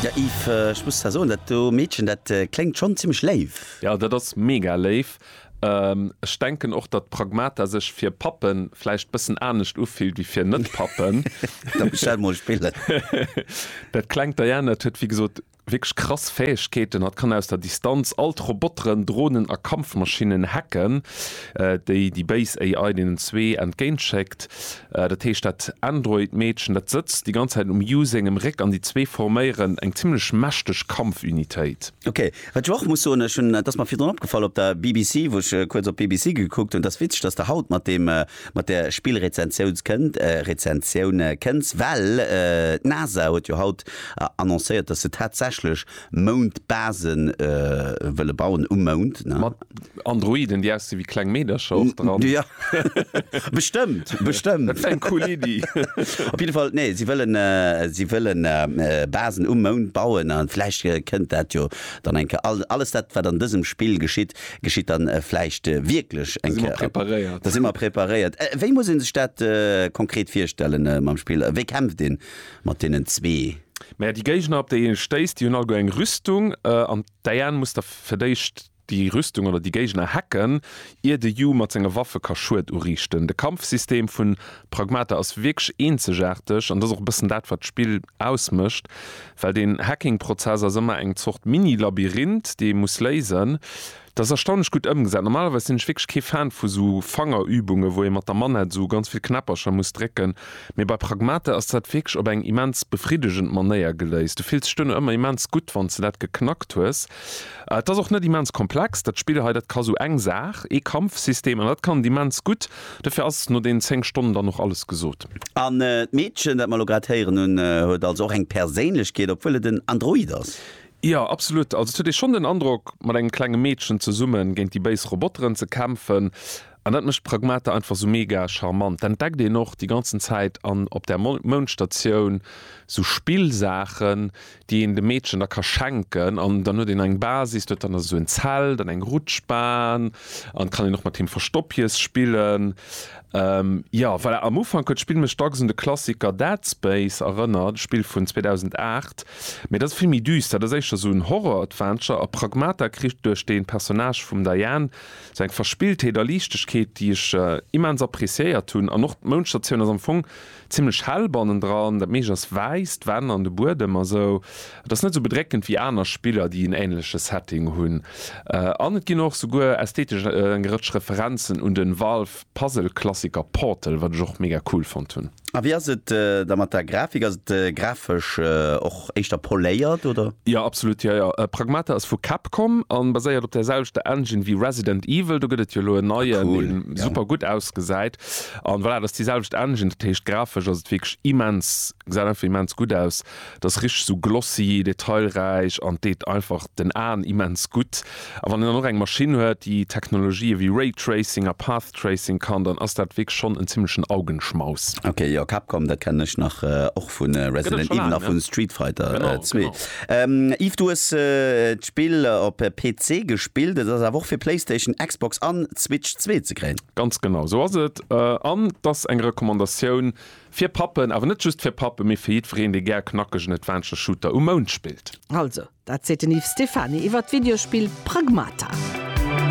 Ja Yves, ech muss der soen, dat do Meedchen, dat kléngt schonn zimmlech léif. Respekt. Jo dat ass mega léif. Ech denken och datt Pragmata sech fir Pappen vläicht bëssen anescht ufillt wéi fir net Pappen. Da bestell mol Spillen. Dat klengt Diane dat huet wéi gesot wierklech krass Fäegkeeten. Hatt kann aus der Distanz all d'Roboteren, Dronen a Kampfmaschinnen hacken, déi déi béis AI deenen zwee entgéint schéckt. Dat heescht dat Android Meedchen dat sëtzt déi ganz Zäit um Yu sengem Réck an déi zwee forméieren eng zimmlech mächteg Kampfunitéit. Ok. Wat ech och muss soen, ech hunn, et ass mer virdrun opgefall op der BBC, wou ech kuerz op d'BBC gekuckt hunn, et ass witzeg, dass de haut mat deem, mat där Spillrezensiouns kënnt, Rezensioun kënns, well d'NASA huet jo haut annoncéiert, dass se tatsächlech Moundbase wëlle bauen, um Mound, ne? Androiden déi aussi wéi kleng Meedercher och dran. Ja bestëmmt, bestëmmt. Dat wär eng cool Iddi. Op jidde Fall, nee, si wëllen, si wëlle Basen um Mound bauen a vläicht kënnt dat jo dann eng Kéier. Alles dat, wat an dësem Spill geschitt, geschitt dann vläicht wierklech eng Kéier. Da si mer preparéiert. Da si mer preparéiert. Wéi muss ee sech dat konkret virstellen mam Spill? Wéi kämpft ee mat deenen zwee? Mä déi Géigner, op déi ee stéisst, déi hunn alleguer eng Rüstung an d'Diane muss da fir d'éischt Déi Rüstung oder déi Géigner hacken, ier de Yu mat senge Waffe ka Schued uriichten. De Kampfsystem vun Pragmata ass wierklech eenzegaarteg an dat ass och e bëssen dat wat d'Spill ausmécht, well den Hacking-Prozess ass ëmmer eng Zort Mini-Labyrinth déi ee muss léisen. Dat ass erstaunlech gutt ëmgesat. Normalerweis sinn ech wierklech kee Fan vu sou Fangerübunge wou ee mat der Manette sou ganz vill Knäppercher muss drécken, mee bei Pragmata ass dat wierklech op eng immens befriddegend Manéier geléist. Du fills dech duerno ëmmer immens gutt wann s de dat geknackt hues. Et ass och net immens komplex, dat Spill hei. Dat ka sou eng Saach, ee Kampfsystem, an dat kann et immens gutt. Dofir ass no deenen 10 Stonnen dann och alles gesot. An d'Meedchen, dat mer elo grad héieren hunn, huet also och eng Perséinlechkeet, obwuel et en Android ass. Jo, absolut. Also et huet ee schonn den Androck, mat engem klenge Meedchen zesummen géint déi béis Roboteren ze kämpfen. An dat mécht d'Pragmata einfach sou mega charmant. D'entdeckt een och déi ganzen Zäit an op där Moundstatioun sou Spillsaachen, déi een dem Meedchen da ka schenken an dann huet een eng Basis, do huet dann esou en Zelt an eng Rutschbahn an kann een och mat him Verstoppjes spillen. Jo voilà, am Ufank huet d'Spill mech dacks un de Klassiker Dead Space erënnert, e Spill vun 2008, mee dat ass vill méi düster. Dat ass éischter esou en Horror-Adventure a Pragmata kritt duerch de Personnage vum Diane esou eng Verspilltheet a Liichtegkeet, déi ech immens appreciéiert hunn an och d'Mounschtertioun ass am Fong Zimlech hell bannendran, dat meescht ass wäiss, d'Wänn an de Buedem a sou. Et ass net sou bedréckend wéi aner Spiller, déi en änleche Setting hunn. An et ginn och souguer ästhetesch eng Rëtsch Referenzen un den Valve-Puzzle-Klassiker Portal, wat ech och mega cool fonnt hunn. A wéi ass et da mat der Grafik? Ass et grafesch och éischter poléiert, oder? Jo, absolut, jo jo. Pragmata ass vu Capcom a baséiert op där selwechter Engine wéi Resident Evil. Do gëtt et jo elo en neien, dee super gutt ausgesäit. An voilà, dat ass déi selwecht Engine, dat heescht grafesch ass et wierklech immens, gesäit einfach immens gutt aus, et ass richteg esou glossy, detailräich an deet einfach den Aen immens gutt. A wann een dann och eng Maschinn huet, déi Technologië wéi Raytracing a Path Tracing kann, dann ass dat wierklech schonn en zimmlechen Augenschmaus. Ok, jo, Capcom, dat kennen ech nach och vu Resident Evil a vu Street Fighter 2. Yves, du hues d'Spill op PC gespillt, et ass awer och fir Playstation, Xbox an Switch zwee ze kréien. Ganz genau esou ass et. An et ass eng Recommandatioun fir Pappen, awer net just fir Pappen, mee fir jiddwereen, dee gär knackegen Adventure Shooter um Mound spillt. Also, dat seet den Yves Stephany iwwert d'Videospill Pragmata.